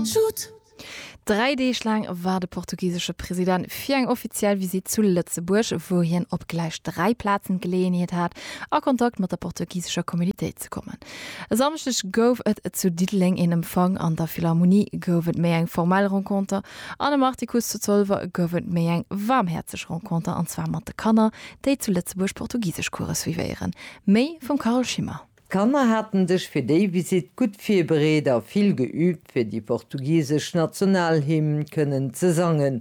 Shoot! Dräi Deeg laang war de portugisesche President fir eng offiziell Visitt zu Lëtzebuerg, wou hien op gläich dräi Plazen d'Geleeënheet hat, a Kontakt mat der portugisescher Communitéit ze kommen. E Samschdeg gouf et zu Diddeleng een Empfang, an der Philharmonie gouf et méi eng formell Renconter an am Artikuss zu Zolwer gouf et méi eng waarmhäerzeg Renconter, an zwar mat de Kanner, déi zu Lëtzebuerg Portugiseschcoure suivéieren. Méi vum Carole Schimmer. D'Kanner haten sech fir déi Visitt gutt virbereet a vill geüübt fir déi portugisesch Nationalhymn kënnen ze sangen.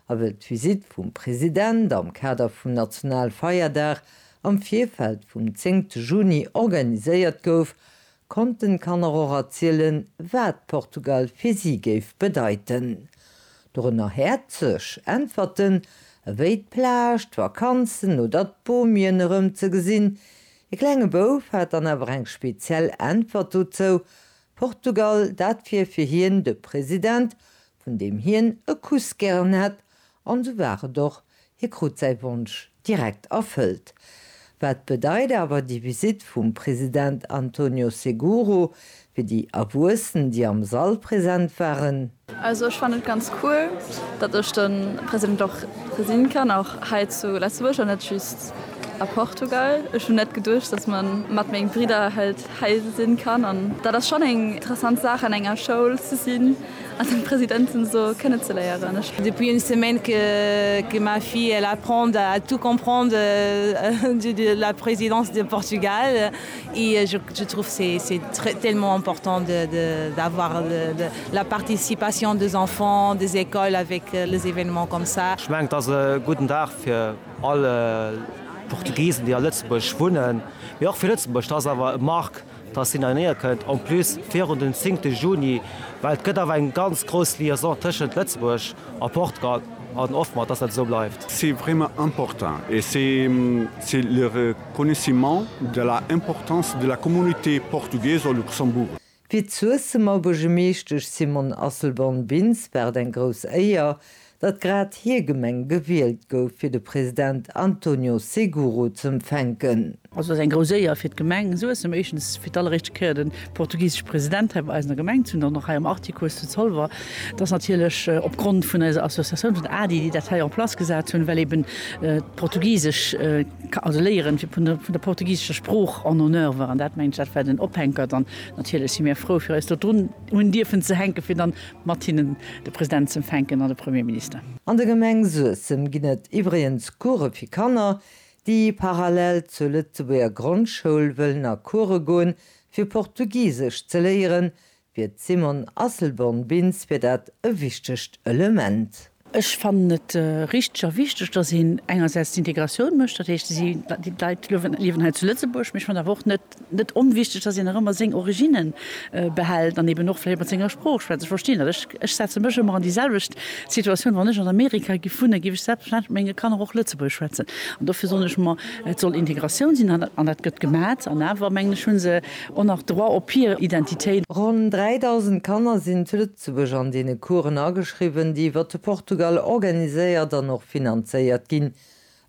A wëll d'Visitt vum President am Kader vum Nationalfeierdag am Virfeld vum zéngte Juni organiséiert gouf, konnten d'Kanner och erzielen, wat Portugal fir si géif bedeiten. Dorënner häerzeg Äntwerten ewéi d'Plage, d'Vakanzen oder d'Bomien erëm ze gesinn, De klenge Bouf hat dann awer eng speziell Äntwert dozou, Portugal, dat wier fir hien de President, vun deem hien e Kuss gären hätt, an sou war et och, hie krut säi Wonsch direkt erfëllt. Wat bedeit awer déi Visitt vum President Antonio Seguro Fir déi Erwuessen déi am Sall present waren. Also ech fannen et ganz cool dat ech de President och gesinn kann och hei zu Letzebuerg an net just a Portugal. Ech hun net geduecht dat man mat meng Bridder halt hei sinn kann an dat ass schon eng interessant Saach an enger Schoul ze sinn an den Presidenten so kënne ze léieren. Ech. Depuis une semaine que que ma fille elle apprend à tout comprendre de la présidence de Portugal. Et je je trouve c'est c'est très tellement important de de d'avoir de de la participation des enfants des écoles avec les événements comme ça. Ech mengen et ass e gudden Dag fir all Portugisen déi a Lëtzebuerg wunnen, mee och fir Lëtzebuerg. Et ass awer e Marque dass hien heinéier kënnt, en plus virun den 10 te Juni, well et gëtt awer eng ganz grouss Liaison tëschent Lëtzebuerg a Portugal an hoffen mer dass dat esou bleift. C'est vraiment important et c'est c'est le Connaissement de la importance de la communauté portugaise au Luxembourg. Fir d'Suessemer Buergermeeschtesch Simone Asselborn-Bintz war et eng grouss Éier, datt grad hir Gemeng gewielt gouf, fir de President Antonio Seguro z'empfänken. Also et ass eng grouss Éier fir d'Gemeng Suessem, éischtens fir d'alleréischte Kéier de portugiseschen President hei bei eis an der Gemeng ze hunn, dann och hei am Artikuss zu Zolwer. Et ass natierlech op Grond vun eiser Associatioun, vun ADDI, déi dat hei en place gesat hunn, well eben d'portugisesch. ka also léieren fir vun der portugisescher Sprooch en honneur war an dat mengen ech dat war den Ophänkert an natierlech si mir frou fir eis do drun hunn dierfen ze hänke fir dann mat hinnen de President z'empfänken an de Premierminister. An der Gemeng Suessem ginn et iwwregens Course fir Kanner, déi parallel zur Lëtzebuerger Grondschoul wëllen a Course goen, fir Portugisesch ze léieren, Fir d'Simone Asselborn-Bintz wier dat e wichtegt Element. Ech fannen et richteg a wichteg, datt een engersäits d'Integratioun mécht, dat heescht, déi Leit liewen hei zu Lëtzebuerg, mee ech fannen awer och net onwichteg, datt een nach ëmmer seng Originne behält an eben och vläicht mat senger Sprooch schwätzt. Ech verstinn dat, ech setze mech ëmmer an déi selwecht Situatioun, wann ech an Amerika giff wunnen, giff ech selbstverständlech mat menge Kanner och Lëtzebuergesch schwätzen an dofir soen ech mer, et soll Integratioun sinn an dat gëtt gemat an awer mengen ech, hu se En nach Droit op hir Identitéit. Ronn 3.000 Kanner sinn zu Lëtzebuerg an deene Coursen ageschriwwen, déi iwwer de Portugal organiséiert an och finanzéiert ginn.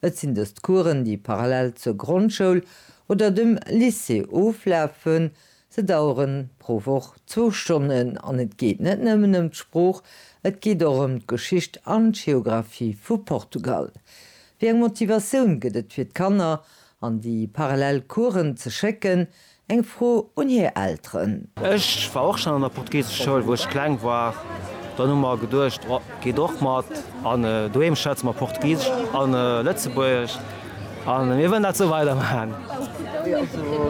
Et sinn dëst Coursen, déi parallel zur Grondschoul oder dem Lycée oflafen. Se daueren pro Woch zwou Stonnen an et geet net nëmmen ëm d'Sprooch, et geet och ëm d'Geschicht an d'Geographie vu Portugal. Wéi eng Motivatioun gëtt et fir d'Kanner An déi parallel Coursen ze schécken? Eng Fro un hir Elteren. Ech war och schon an der Portugiseschschoul wou ech kleng war. Dann hu mer geduecht, oh geet och mat an doheem schwätze mer Portugisesch an Lëtzebuergesch an mir wëllen dat sou weider maachen.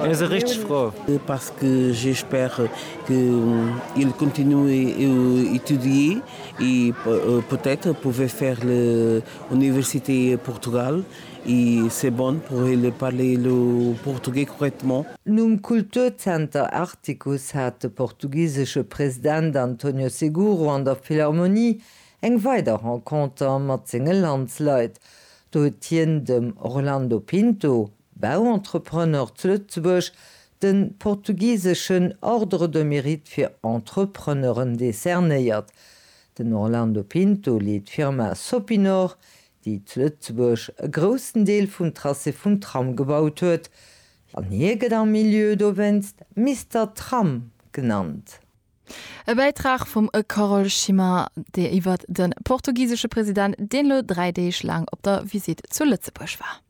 Mir si richteg frou. Parce que j'espère que il continue à étudier et peut-être pouvait faire l'université Portugal. I c'est bon pour il parler le portugais correctement. Nom Kulturzenter Artikuss hat de portugisesche President António Seguro an der Philharmonie eng weider Renconter mat senge Landsleit. Do huet hien dem Orlando Pinto, Bauentrepreneur zu Lëtzebuerg, de portugiseschen Ordre de Mérite fir Entrepreneuren decernéiert. Den Orlando Pinto leet d'Firma Sopinor, déi zu Lëtzebuerg e groussen Deel vum Tracé vum Tram gebaut huet, an hie gëtt am Milieu dowéinst Mister Tram genannt. E Bäitrag vum Carole Schimmer iwwer de portugisesche President, deen elo dräi Deeg laang op der Visitt zu Lëtzebuerg war.